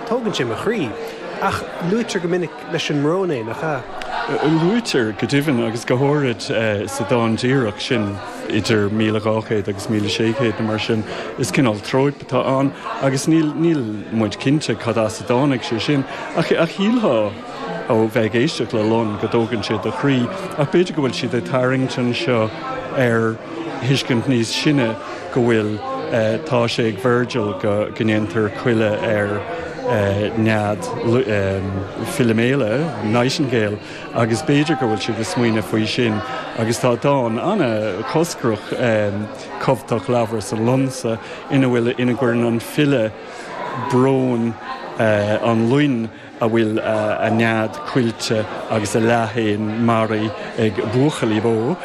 Tógann sé mo chroí. Ach luaitear go minic leis an mbrón é, nach ea? Luaitear, go deimhin, agus go háirid sa dán díreach sin idir míle dhá chéad agus míle sé chéad nó mar sin. Is cineál tróip atá ann agus níl muid cinnte cad as a dtáinig sé sin, ach shílfeá, ó bheith ag éisteacht le lon go dtógann sé do chroí, ach b'fhéidir go bhfuil siad ag tarraingt anseo ar thuiscint níos sine go bhfuil, tá sé ag Virgil go ndéantar coilleadh ar nead Philiméala, Nightingale, agus b'fhéidir go bhfuil siad ag smaoineamh faoi sin agus tá dán an-choscrach, Cumhthach Labhras an Lon-sa, ina bhfuil, ina gcuireann an file brón an loin. a bhfuil a nead coillte agus a leathéan maraithe ag buachaillí bó,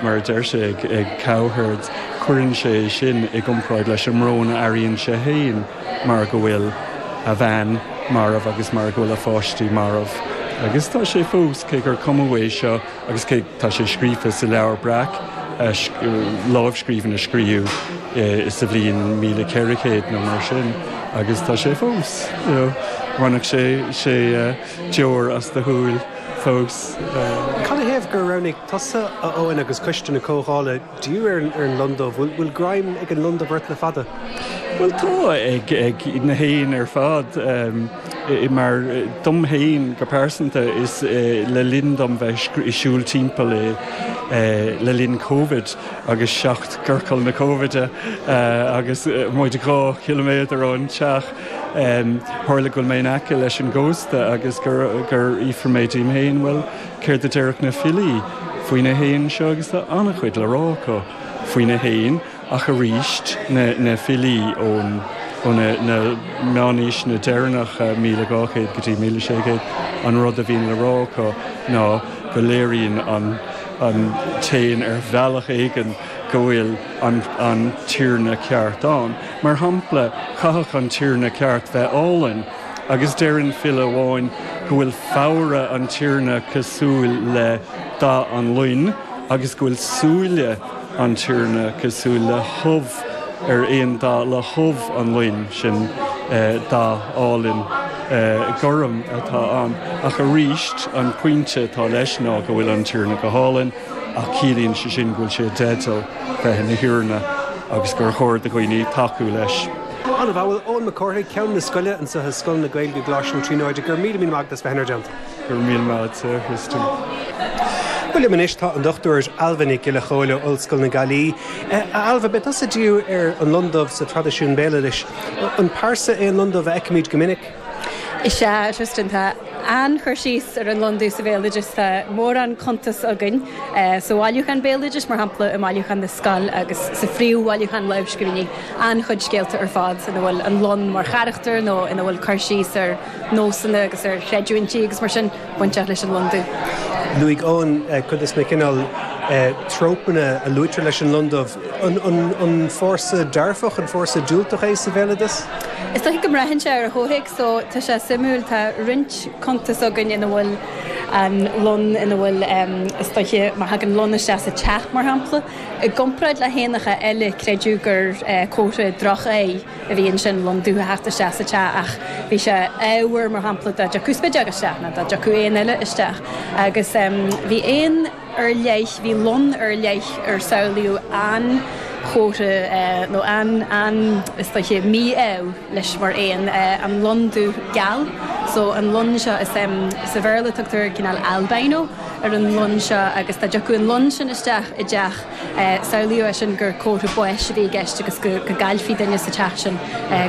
mar a deir sé ag Cowherd, cuireann sé é sin i gcomparáid leis an mbrón a airíonn sé féin mar go bhfuil a bhean marbh agus mar go bhfuil a pháistí marbh. Agus tá sé fós, cé gur cumadh é seo, Agus cé tá sé scríofa sa Leabhar Breac, lámhscríbhinn a scríobhadh sa bhliain míle ceithre chéad nó mar sin, agus tá sé fós, you know, bhainfeadh sé sé deoir as do shúil fós. Canathaobh gur roghnaigh tusa, a Eoin, agus coiste na comhdhála, díriú ar an lon dubh? Bhfuil greim ag an lon dubh ort le fada? Bhuel, tá ag na héin ar fad. Mar, dom féin go pearsanta, is le linn dom bheith ag siúl timpeall i, le linn Covid agus seacht gciorcal na Covide agus muid dhá chiliméadar ón teach, tharla go bhfuil mé in aice leis an gcósta agus gur fhiafraigh mé díom féin, bhuel, Céard a déarfadh na filí faoi na héin seo agus tá an-chuid le rá acu faoi na héin ach arís na filí ó na meánaoiseanna deireanacha, 1200 go dtí 1600, an rud a bhíonn le rá acu ná go léiríonn an t-éan ar bhealach éigin go bhfuil an tiarna ceart ann. Mar shampla, chaithfeadh an tiarna ceart bheith álainn. Agus deireann file amháin go bhfuil fabhra an tiarna cosúil le dath an loin agus go bhfuil súile an tiarna cosúil le hubh ar aon dath le hubh an loin, sin dath álainn gorm atá ann. Ach arís, an pointe atá leis ná go bhfuil an tiarna go hálainn. ach ciallaíonn sé sin go bhfuil sé i dteideal bheith ina thiarna agus gur chóir do dhaoine tacú leis. Ana mhaith. Bhuel, Eoin Mac Cárthaigh, Ceann na Scoile anseo i Scoil na Gaeilge, Coláiste na Tríonóide, go raibh míle míle maith agat as bheith inár dteannta. Go raibh míle maith agat, a Tristan. Bhuel, liom anois, tá an Dr. Ailbhe Nic Giolla Chomhaill ó Ollscoil na Gaillimhe. A Ailbhe, beidh tusa ag díriú ar an lon dubh sa traidisiún béaloidis. An pearsa é an lon dubh a fheicimid go minic? Is ea, a Tristan, tá an-chur síos ar an londú sa bhéaloideas. Tá mórán cuntas againn sa bhailiúchán béaloidis, mar shampla i mBailiúchán na Scol agus sa Phríomh-Bhailiúchán Lámhscríbhinní, an-chuid scéalta ar fad ina bhfuil an lon mar charachtar nó ina bhfuil cur síos ar nósanna agus ar chreidiúintí agus mar sin. bainteach leis an londubh. Luaigh Eoin cuid de na cineál trópanna a luaitear leis an londubh. An fórsa dearfach, an fórsa diúltach é sa bhéaloideas? Is dóiche go mbraitheann sé ar an chomhthéacs so. Tá sé suimiúil, tá roinnt cuntas againn ina bhfuil an lon, ina bhfuil, is dóiche, má thagann lon isteach sa teach, mar shampla, i gcomparáid le héanacha eile, creideadh gur comhartha droch-áidh. a bhí ansin lon dubh a theacht isteach sa teach ach bhí sé ádhmhar mar shampla dá dtiocfadh spideog isteach ná dá dtiocfadh éan eile isteach agus bhí éan ar leith, bhí lon ar leith ar samhlaíodh an-chomhartha nó an, an, is dóiche, mí-ádh leis mar éan, an lon dubh geal so an lon seo is sa Bhéarla tugtar cineál albino ar an lon seo agus dá dtiocfadh an lon sin isteach i dteach. Samhlaíodh é sin gur comhartha báis a bhí i gceist agus go gcaillfí duine sa teach sin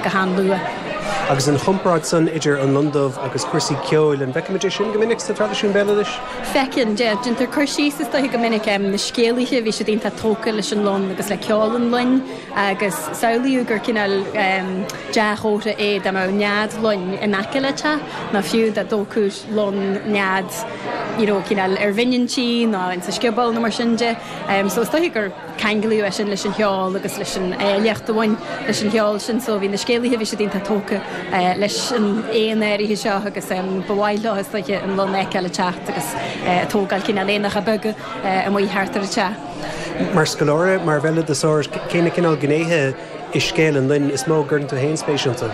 go han-luath. Agus an chomparáid san idir an lon dubh agus cúrsaí ceoil, an bhfeicimid é sin go minic sa traidisiún béaloidis? Feiceann, yeah. Déantar cur síos is dóiche go minic, na scéalaithe, bhí siad iontach tógtha leis an lon agus le ceol an loin agus samhlaíodh gur cineál dea-chomhartha é dá mbeadh nead loin in aice le teach nó fiú dá dtógfadh lon, nead, you know cineál ar bhinn an tí nó insa scioból nó mar sin de. So is dóiche gur ceanglaíodh é sin leis an cheol agus leis an áilleacht a bhain leis an cheol sin so bhí na scéalaithe bhí siad iontach tógtha leis an éan áirithe seo agus ba mhaith leo is dóiche an lon a fheiceáil ag teacht agus ag tógáil cineál éanacha beaga amuigh thart ar an teach. Mar scoláire, mar bhéaloideasóir, cé na cineál gnéithe i scéal an loin is mó a gcuireann tú féin spéis iontu?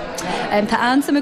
Tá an-suim agam